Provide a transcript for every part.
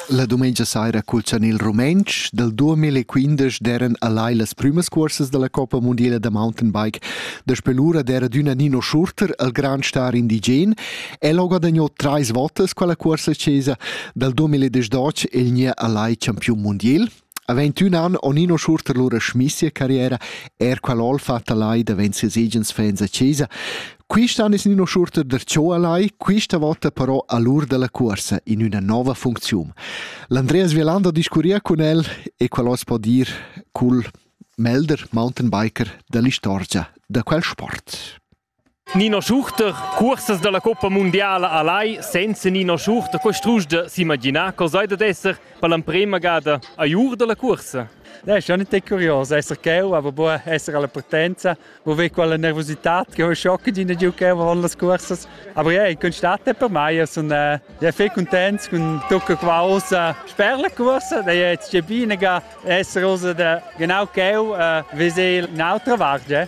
La dumengia saira cul chanil rumentsch del 2015 deren allai las prümas cuorsas della Coppa Mondiala da Mountainbike. Daspö lura dera d'üna Nino Schurter al grand star indigen. El ho guadagnò trais votas quella cuorsa scesa. Dal 2012 el nia allai champiun mundial. A ventün an ho Nino Schurter lura schmiss sia carriera, eir quel ho fat alai davent sias egens fans a chesa. Quist an es Nino Schurter darcho alai, quista vota però a l'ur da la cuorsa in üna nouva funcziun. L'Andreas Violanda discurria cun el e quel hoz po dir cul melder mountainbiker da l'istorgia da quel sport. Nino Schuchter, cursas dalla Coppa mundiala a Lai, senza Nino Schuchter, quest'rus da s'imaginar cosa da esser per l'emprema gada a iur dalla cursa. È schon nicht curios esser cheu, aber buon esser alla partenza, wo vi quella nervosità che ho shock di giù cheu von las cursas. Aber ja, è constata per mai, sono äh, ja viel contents con tocca qua ossa per la cursa, da jetzt schon binaga esser ossa da genau cheu, äh, wie sie in un'altra vart, ja.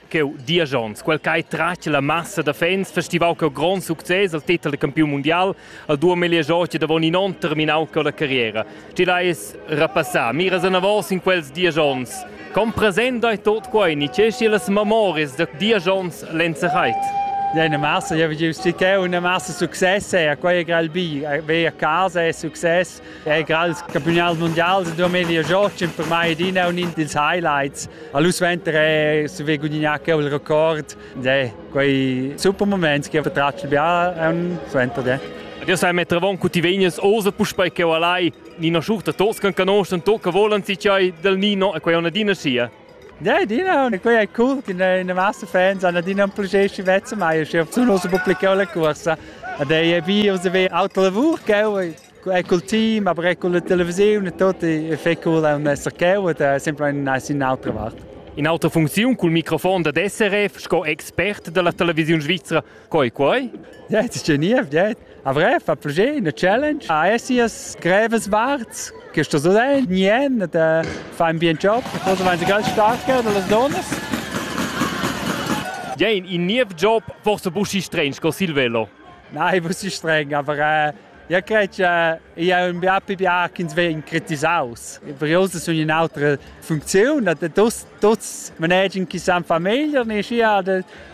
Cheu diesch onns, quel ch'ei tratg la massa da fans, festivau cheu grond success al titel da campiun mundial, al duo meglier giochi davon in onn terminau cun la carriera. Ti l'eis repassà, miras anavos in quels diesch onns. Com presenta tot quei, ni che si las memories da diesch onns lenza heit? Ja, eine Masse, ich habe giustifiziert, eine Masse Success, ja, quei è grel bi, vei a casa è success, È gerade das Campionnat Mondial sind Domenica Jotin per mai adina un in dils highlights. All'us venter è se ve gudignà che il record. Dai, quei super moment che ha vertratto bia è un venter. Dai. Dir sei metter avon cu ti vegnas osa puspei cheu allai Nina Schurter Toscan canoscen tocca volan si chai del Nino e quei una dina sia. Ja, Dina, und quei è cool, che i Master-Fans hanno Dina un piacere vezza mai, e sono pubblicato la corsa. E dai è vi, o se ve auto lavur, cheu. Quei cul team, aber eir culla televisiun e tot ei fai cool al messer cheu ed è sempre nice in autra vart. In autra funcziun cul microfon dad SRF sco expert dalla televisiun svizra. Coi quai? Ja, das ist genial, ja. Aber er fa projet, eine challenge. Ah, es ist grevas Warts. Kannst du so sein? Nien, da fai einen Job. Also, wenn sie gerade stark gehen, dann lass donas. Jane, in niev job forse bussi streng sco Silvello. Nein, bussi streng, aber äh, Eu crei cha i è ün bia pli bia ch'ins vegn critisaus. Briosa sun in autra funcziun, da tuts tuts manegian chi s'han famiglia, nischia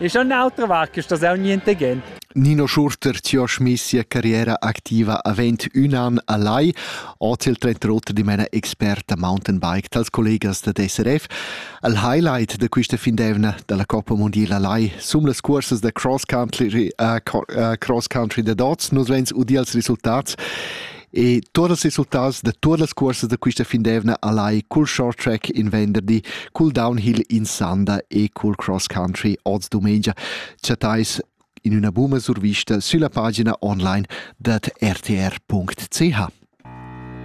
es schon autra vart che sto ser niente gen. Nino Schurter ti ho schmis sia carriera activa avent ün an a Lai, ot il 38 dimena expert da mountainbike dals collegas da SRF. El highlight da quista fin d'eivna da la Coppa Mondiala Lai sum las cuorsas da cross country uh, uh, cross country da dots nus vegns udir als resultats e totes els resultats da totes las cuorsas da quista fin d'eivna a Lai cul short track in venderdi, cul downhill in sanda e cul cross country odds dumengia chattais in üna buma survista sülla pagina online dat rtr.ch.